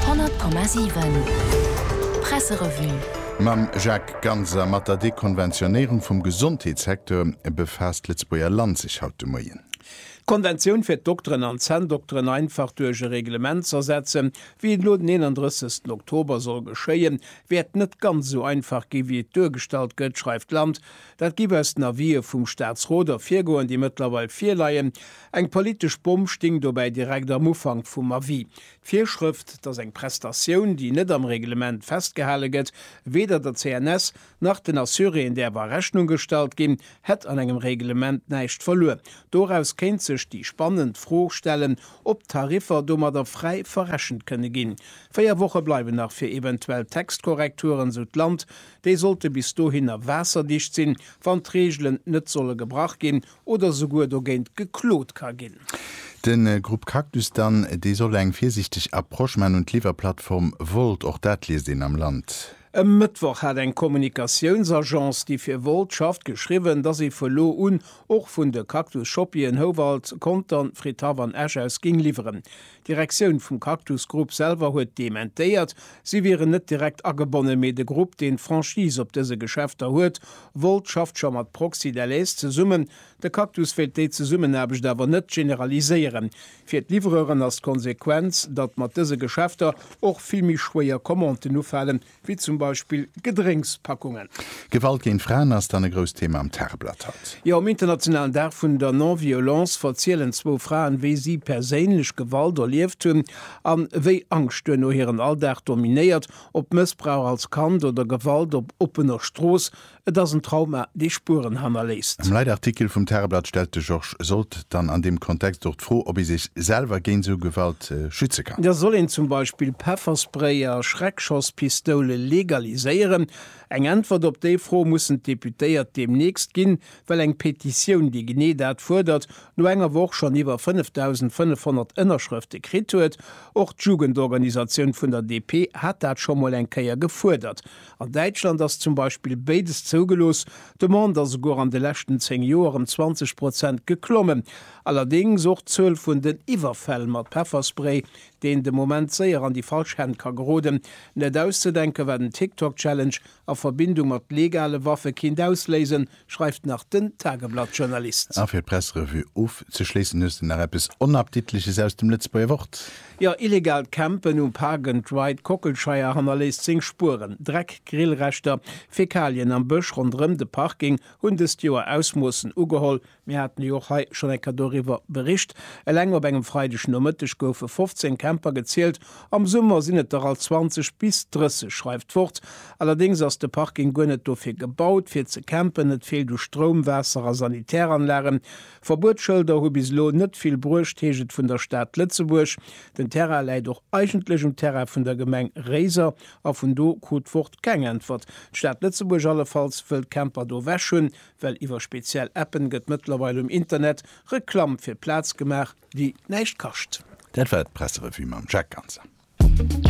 100,7 Presserevue. Mam Jacques Ganz a mat der Dekonventionéierung vum Gesondheetssecteur befaasst d'Lëtzebuerger Land sech haut de Moien. D'Konventioun fir d'Dokteren an d'Zänndokteren einfach duerch e Reglement z'ersetzen, wéi et elo den 31 Oktober soll geschéien, wäert net ganz esou einfach gi wéi et duergestallt gëtt, schreift d'Land. Dat géif aus den Avisë vum Staatsrot ervirgoen, déi mëttlerweil virleien. Eng politesch Bomm stéing dobäi direkt am Ufank vum Avis, d'Virschrëft, datt eng Prestatioun, déi net am Reglement festgehale gëtt, weder der CNS nach den Assuréeën däerf a Rechnung gestallt ginn, hätt an engem Reglement näischt verluer. Doraus kéint sech déi spannend Fro stellen, ob d'Tariffer domadder fräi verrechent kënne ginn. Véier Woche bleiwen nach fir eventuell Textkorrekturen, sou d'Land. Déi sollte bis dohinner waasserdicht sinn, wann d'Reegelen net solle gebrach ginn oder souguer dogéint geklot ka ginn. De Grupp Cactus dann, dee soll eng virsiichteg Approche man un d'Liwwerplattform Wolt. Och dat liest een am Land. E Mëttwoch hat eng Kommunikatiounsagence, déi fir Wolt schafft, geschriwwen, dass ee vu lo un och vun de Cactus Shoppien Houwald, Contern, Fridhaff an Esch aus géing liwweren. D'Direktioun vum Cactus Group selwer huet dementéiert, si wieren net direkt agebonnen, mee de Grupp, deen d'Franchise op dëse Geschäfter huet, Volt, schafft scho mat Proxy Delaise zesummen. De Cactus wéilt déi Zesummenaarbecht awer net generaliséieren. Fir d'Livreuren ass d'Konsequenz, datt mat dëse Geschäfter och vill méi schwéier Commanden ufalen, wéi zum Beispill Gedrénkspackungen. Gewalt géint Fraen ass dann e grousst Thema am Tageblatt haut. Jo, um internationalen Dag vun der Non-Violence verzielen zwou Fraen, wéi si perséinlech Gewalt erlieft hunn an wéi Angscht duerno hiren Alldag dominéiert. Ob Mëssbrauch als Kand oder Gewalt op oppener Strooss, Et ass en Trauma, dee Spueren hannerléisst. Am Leitartikel vum Tageblatt stellt de Georges Sold dann an deem Kontext och d'Fro, ob ee sech selwer géint esou Gewalt schütze kann. Da soll een zum Beispill Pefferspray a Schreckschosspistoule legaliséieren. Eng Äntwert op déi Fro mussen d'Deputéiert deemnächst ginn, well eng Petitioun, déi genee dat fuerdert, no enger Woch schonn iwwer 5.500 Ënnerschrëfte kritt huet. Och d'Jugendorganisatioun vun der DP hat dat scho mol eng Kéier gefuerdert. An Däitschland ass zum Beispill béides zougelooss. D'Demande ass esouguer an de leschten 10 Joer ëm 20 Prozent geklommen. Allerdéngs och d'Zuel vun den Iwwerfäll mat Pefferspray, deen de Moment séier an déi falsch Hänn ka geroden. Net auszedenke war den TikTok-Challenge a Verbindung mat legale Waffe kéint ausléisen, schreift nach den Tageblatt-Journalist. A fir d'Pressrevue ofzeschléissen hues de nach eppes Onappditleches aus dem Lëtzebuerger Wort. Jo, illegaalt Campen um Park and Ride Kockelscheier hannerléisst seng Spueren. Dreck, Grillreschter, Fäkalien am Bësch ronderëm de Parking hunn dëst Joer Ausmoossen ugeholl. Mir haten jo och hei schonn enker doriwwer bericht. Eleng op engem Freideg Nomëtteg goufe 15 Camper gezielt Am Summer sinn et der alt 20 bis 30, schreift d'Wort. Allerdéngs ass de Parking guer net dofir gebaut, fir ze campen. Et feelt u Stroum, Waasser a Sanitäranlagen. Verbuetsschëlder hu bis elo net vill bruecht, heescht et vun der Stad Lëtzebuerg. Den Terrain läit och eigentlech um Terrain vun der Gemeng Réiser a vun do krut d'Wort keng Äntwert. D'Stad Lëtzebuerg allefalls wëll d'Camper do ewech hunn, well iwwer speziell Appen gëtt mëttlerweil um Internet Reklamm fir d'Plaz gemaach. déi näischt kascht. Dat war d'Presserevue mam Jacques Ganser.